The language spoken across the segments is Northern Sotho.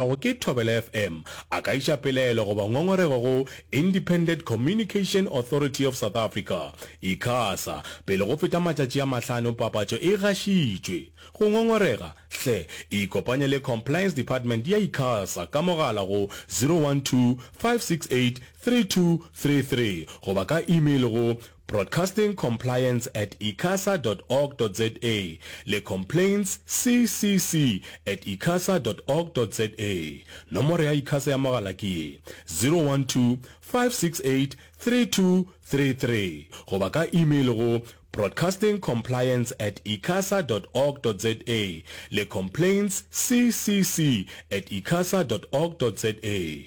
go ke Thobela FM a ka iša pelaelo goba ngongorego go Independent Communication Authority of South Africa, Icasa, pele go feta matšatši a mahlano papatšo e gašitšwe. Go ngongorega, hle ikopanye le Compliance Department ya Icasa ka mogala go 012 568 3233 goba ka email go. Broadcasting Compliance at icasa dot org dot za le Complaints CCC at icasa dot org dot za. Nomoro ya Icasa ya mogala ke ye, 012-568-3233 goba ka email go Broadcasting Compliance at icasa dot org dot za le Complaints CCC at icasa dot org dot za.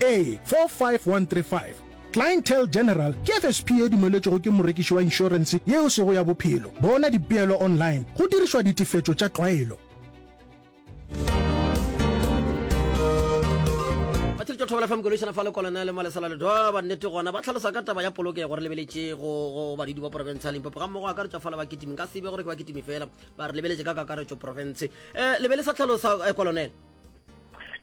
A45135 Clientele General ke FSP e dumeletšwego ke morekiši wa inšorense yeo sego ya bophelo. Bona dipeelo online go dirišwa ditefetšo tša tlwaelo. ba tšhiritša thobela fm kološana fa lekolane le malesa la ledoa ba nnete gona ba tlhalosa ka taba ya polokego re lebeletše go go badidi ba porofense ya limpopo ga mmogo a ka re tšwa fala ba ketimi nka sebe gore ke ba ketimi fela ba re lebeletše ka kakaretšo porofense um eh, lebe le sa tlhalosa eh, kolonele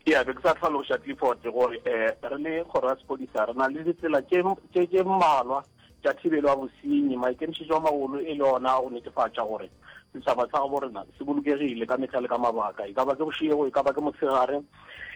ya be ke sa tlhaloša clifford gore um re le kgoro ya sepodisa re na le ditsela tše mmalwa tša thibelo ya bosenyi maikemišetšo a magolo e le ona go netefatša gore setšhaba sa gabo rena se bolokegile ka mehla le ka mabaka e ka ba ke bošego e ka ba ke motshegare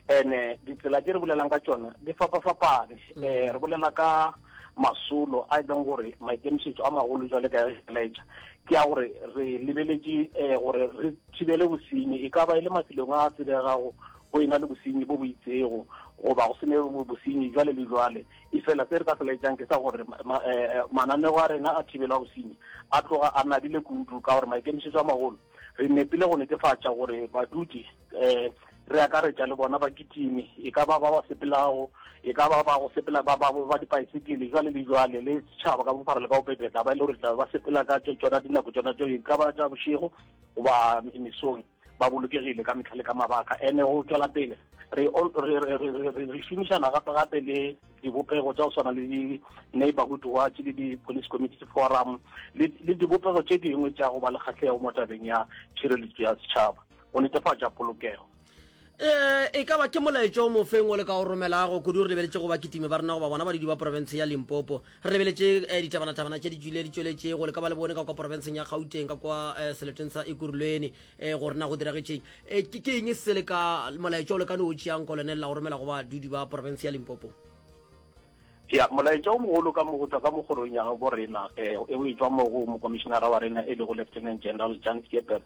and-e ditsela tše re bolelang ka tšona di fapa-fapane um re bolela ka masolo a e leng gore maikemišetšo a magolo jwale ka ge laetša ke a gore re lebeletše um gore re thibele bosenyi e ka ba e le mafelong a tsebegago go ena le bosenyi bo bo itsego goba go sene bosenyi jwale le jwale e fela se re ka se laetšang ke sa gore mananego a rena a thibela bosenyi a tloga a nabile kudu ka gore maikemišetšo a magolo re nepile go netefatša gore badudi um re akaretša le bona bakitimi e ka ba ba ba sepelago e ka ba ba go sepela ba ba ba dipaesekele jwale le jwale le setšhaba ka bophara le ka bobebe tla ba e le gore tla ba sepela ka tsona dinako tsona tso e ka ba tša bošego goba mesong ba bolokegile ka metlha le ka mabaka ene go tswela pele re šomišana gape gape le dibopego tsa go tshwana le di-neighborhood watch le di-police community forum le dibopego tše dingwe tša go ba le kgatlhego mo tabeng ya tšhireletso ya setšhaba go netefatša polokego um e ka ba ke molaetšo o mofeng o le ka o romelago kudu re lebeletše go ba kitime ba rena goba bona badidi ba porofense ya limpopo re lebeletše um ditabanatabana tše di tswile di tšweletše go le ka ba le bone ka kwa porofenseng ya gauteng ka kwa um seleteng sa ekurulweni um go rena go diragetšeng um ke eng se le ka molaetšo o le ka ne o tšeang ko lone lela go romela go badudi ba porofense ya limpopo Ya, molaetša o mogolo ka mo go tšwa ka mo kgorong ya gabo rena, eh, e o e tšwa mo go mokomišenara wa rena e lego Lieutenant General Jan Skeepers,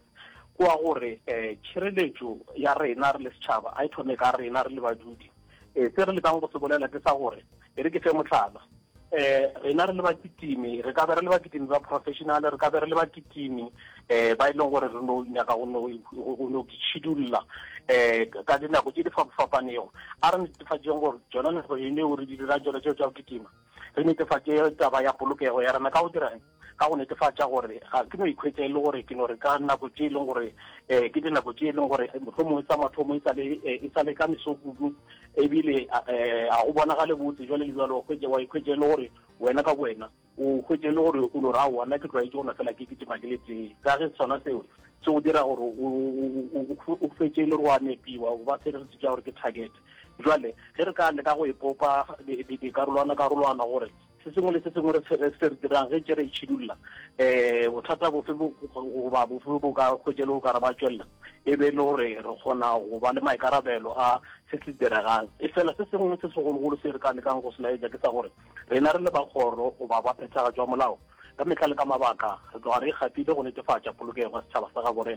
ke wa gore eh, tšhireletšo ya rena re le setšhaba a e thome ka rena re le badudi. Eh, se re lekang go se bolela ke sa gore, e re ke fe mohlala, eh, rena re le bakitimi re ka be re le bakitimi ba professional, re ka be re le bakitimi, um ba e leng gore re no nyaka go no tšhidulla um ka dinako tše di fapafapanego a re netefatšeng gore tsona nako eneo re di dira tsona tseo tsa go kitima re netefatše taba ya polokego ya rena ka go dirang ka go netefatša gore ga ke no ikhwetsa e le gore ke no re ka nako tše e leng gore um ke dinako tše e leng gore mohlomongwe tsa mathomo e sale e ka mesokudu ebile um ga go bonagale botse jale le jalo wa ikhwetsa e le gore wena ka wena O hwetše e le gore o no re, Aowa, nna ke tlwaetše go nwa fela ke kitima ke le tee. Ka ge sona seo se go dira gore o hwetše e le gore o a nepiwa, o ba feregetše tša gore ke target. Bjale ge re ka leka go ipopa dikarolwana-karolwana gore se sengwe le se sengwe se re se dirang ge ntše re itšhidulla, um bothata bofe goba bofe bo ka hwetše e le go ka re ba tšwelela, e be e le gore re kgona go ba le maikarabelo a se se diregang. Efela se sengwe se segologolo se re ka lekang go se laetša ke sa gore Rena re le ba kgoro goba ba phethagatšo ya molao, ka mehla le ka mabaka re tloga re ikgapile go netefatša polokego ya setšhaba sa gaborena.